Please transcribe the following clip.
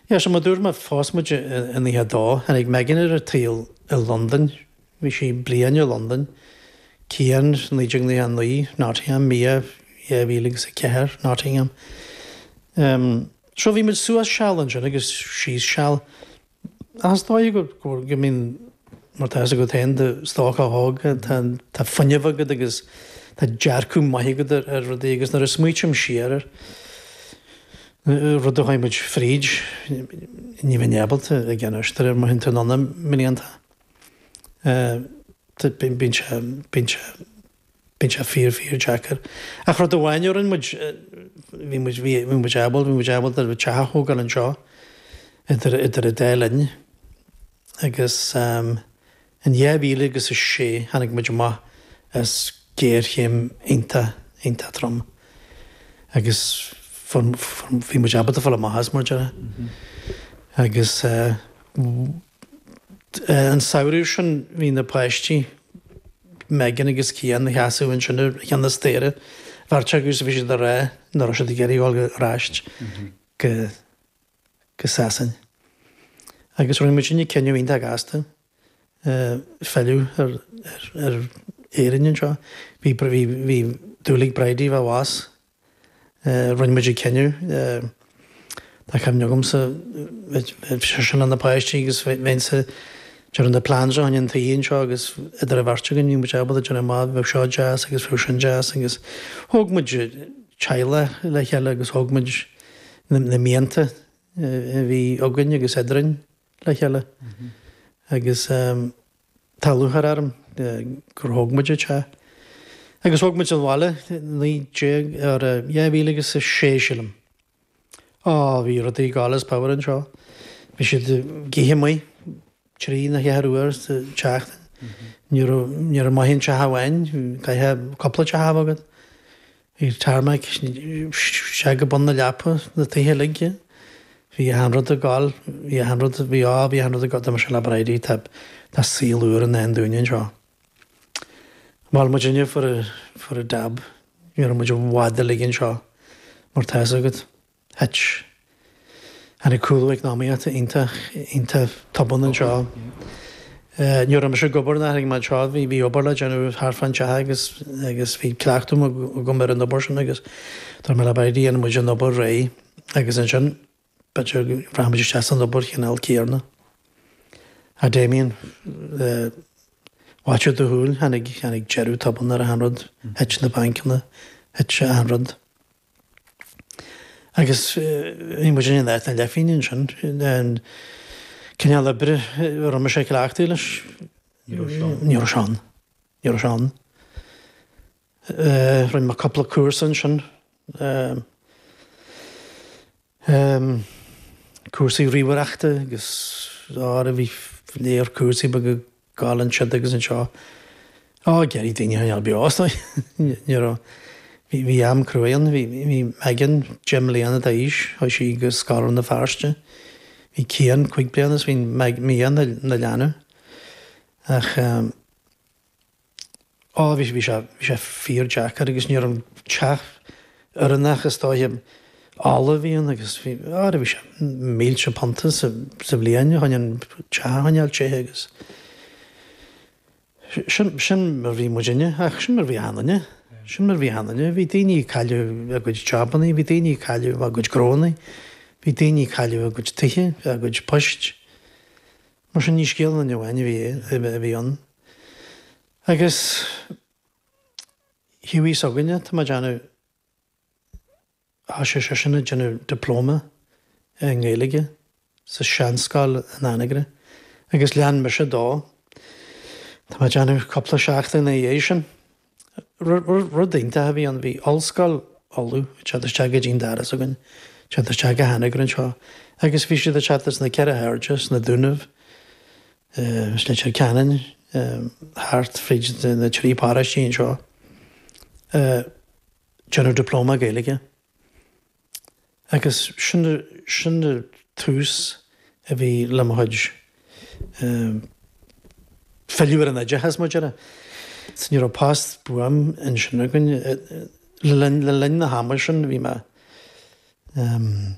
So mar a dúirt mé, phós muid i nócha a dó. Tháinig Megan ar an tsaol i Londain, bhí sí bliain i Londain, Cian, 1999, Nottingham, Mia, 2004, Nottingham. So bhí muid suas seal ansin agus síos seal. Ach is dóiche go mbíonn, mar tá fhios agat féin, do stoc á dhó agat, tá fuinneamh agat agus tá dearcadh maith agat ar rudaí agus nuair a smaoitím siar ar na rudaí a chuaigh muid fríd, ní bheinn ábalta a dhéanamh mar théann tú anonn i mblianta. Bíonn sé, bíonn sé. Bíonn sé fíor, fíor deacair. Ach rud amháin a rinne muid, bhí muid, bhí, bhí muid ábhal, bhí muid ábalta teach a thógáil anseo idir, idir an dá linn. Agus, ehm, in 2006 tháinig muid amach as géarchéim iontach, iontach trom. Agus fuair, fuair, bhí muid ábalta fáil amach as, mar a déarfá. Agus, eh, An samhradh sin bhí na páistí, Megan agus Cian, ina seasamh ansin ag ceann an staighre beirt acu agus bhí siad ag rá nach raibh siad ag iarraidh dhul ar ais go Sasain. Agus rinne muid an cinneadh iontach gasta filleadh ar Éirinn anseo. Bhí dúil ag Bridie fá bhás Rinne muid an cinneadh, tá cuimhne agamsa, bheadh seisean leis na páistí agus bheinnse ag dearadh na plans a choinne an tí anseo agus idir an bheirt againn bhí muid ábalta a dhéanamh amach, bheadh seo deas agus bheadh sin deas agus thóg muid teaghlach le chéile agus thóg muid na mianta a bhí againn agus eadrainn. le chéile agus tá lúcháir orm gur thóg muid an teach agus thóg muid an bhaile 2006 sílim. Á, bhí rudaí God is power anseo. Bhí siad ag ithe amuigh trí nó cheathair uair sa tseachtain. Ní raibh maith aon teach amháin, caithfidh cúpla teach a bheith agat. Bhí tarmac isteach go bun na leapa na tithe uilig. Bhí achan rud ag gol, bhí achan rud, bhí á, bhí achan rud ag gol. Dúirt mise le Bridie, tá, tá saol úr i ndán dúinne anseo. Mhol muid inniu for a, for a dab, ní raibh muid i bhfad uilig anseo, mar tá fhios agat. Thit, tháinig cúlú eacnamaíochta iontach, iontach tobann anseo. Ní raibh mise ag obair nuair a tháinig mé anseo, bhí, bhí obair le déanamh thart fán teach agus, agus bhí cleachtadh agam ar an obair sin agus dúirt mé le Bridie dhéanfaidh muid an obair réidh agus ansin b'fhéidir rachaidh muid isteach san obair cineál céarna. Ach, Damien, faiteadh do shúil, tháinig, tháinig deireadh tobann ar achan rud, thit na bancanna, thit achan rud. Agus bhí muid in áit na leithphingine ansin, an cineál oibre a raibh mise cleachtaithe leis, ní raibh sé ann, ní raibh sé ann, ní raibh sé ann. Rinne mé cúpla cúrsa ansin. Um cúrsaí ríomhaireachta agus ábhair a bhí leor cúrsaí beaga ag gabháil ansiúd agus anseo. Á, d'éirigh daoine an iomarca beo astu. Ní raibh, bhí, bhí am cruaidh ann, bhí, bhí Megan deich mbliana d'aois, chuaigh sí go scoil Rann na Feirste. Bhí Cian cúig bliana is bhí Meg, Mia ina, ina leanbh. Ach, Á, bhí sé, bhí sé fíor-deacair agus ní raibh an teach oiriúnach is dóiche, ola a bhí ann agus bhí, á bhí sé, mílte punta sa, sa bhliain chun an teach a choinneáil te agus sin, sin mar a bhí muidinne ach sin mar a bhí achan nduine, sin mar a bhí achan nduine, bhí daoine ag cailleadh a gcuid jabannaí, bhí daoine ag cailleadh a gcuid gnóannaí, bhí daoine ag cailleadh a gcuid tithe, a gcuid poist. Mar sin, ní scéal linne amháin a bhí ann. Agus he we s'againne, tá mé ag déanamh, bhí sé seisean ag déanamh dioplóma i nGaeilge sa seanscoil in Anagaire agus lean mise dó. Tá mé ag déanamh cúpla seachtain ina dhiaidh sin. Rud iontach a bhí ann, bhí Ollscoil Uladh ag teacht isteach go dtí an doras againn, ag teacht isteach go hAnagaire anseo agus bhí siad ag teacht as na ceithre hairde, sna Dúnaibh, as Leitir Ceanainn, thart fríd na trí paróistí anseo, ag déanamh Dioplóma Gaeilge. Agus sin an tús a bhí le mo chuid filleadh ar an oideachas, mar a déarfá. Sea, ní raibh post buan ansin againn. Le linn na hama sin, bhí mé, em,